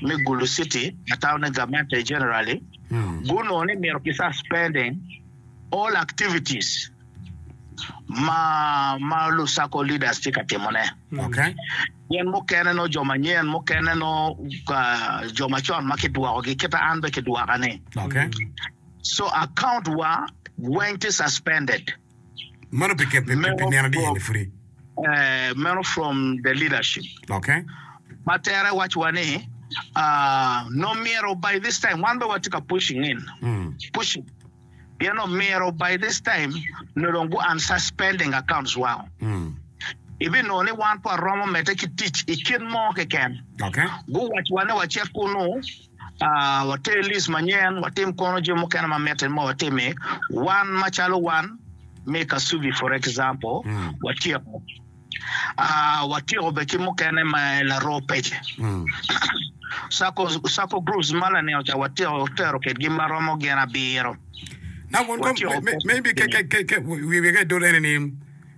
me Gulu City, Atawne Gamente Generali gunongo ni mito kisa spending all activities ma ma Lusako Leaders tye ka timone. Gin mukene nongo jo manyen, mukene nongo jo macon ma kidwokogi kite an bene kidwoka ni. So account wa weng tye suspended. Meno from the leadership ma tere waco wa ni omyero by this time wan dong watye ka pushing in pushing pien omyero by this time nyo dong gu unsuspending accounts wa ibi nongo ni wan pe waromo mede ki tic ikit mo keken gu waco wa ni wacit kunu. A Water list manyen, watim kono jo mukene ma mitte ma watimi wan macalo wan me Kasubi for example watyeko. A Watyeko bene ki mukene me laroo pece. Sacco Sacco groups ma lanen ca watyeko tero kitgi ma romo gin abiro. Now Watyeko maybe wiye ka idolo ene ni.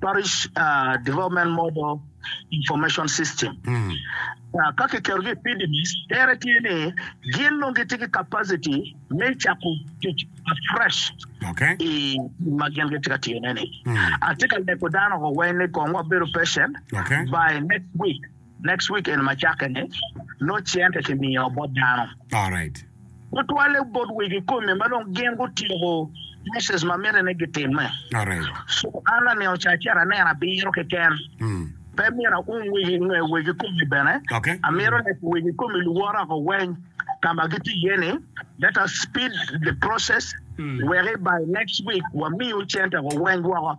Parish Development Model Information System. Ka kiketogi i PDMIS, tere tye ni gin dong gitye ki capacity me cako tic afresh i gin ma gin gitye ka tiyone-ni. Atye ka lego dano weng ni kong wabedo patient by next week Next week eni macakke ni noo cente ki miyo bot dano. Alright. Gutwale bot wegi kome ma dong gin gutyeko process ma miti ni gitimme. Alright. So an laningo ca acito aneno abiro keken. Mm. Pe myero aum wegi nge wegi kome bene. Okay. Amito ni wegi kome luwota ko weny ka ma gitye iye ni let us speed the process weki by next week wamiu cente ko weny woko.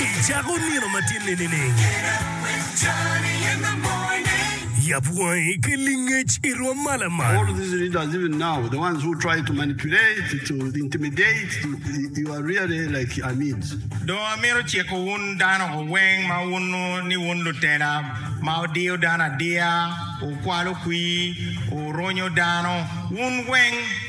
I cako nino ma tye ninining? Yab wangi ki lingec i rwom ma lamal. All these leaders even now, the ones who try to manipulate, to intimidate, you are really like amids. Do amito ciko wun dano weng ma wuno ni wun lutela ma wudiyo dano adiya, wukwalo kwir, wuronyo dano, wun weng.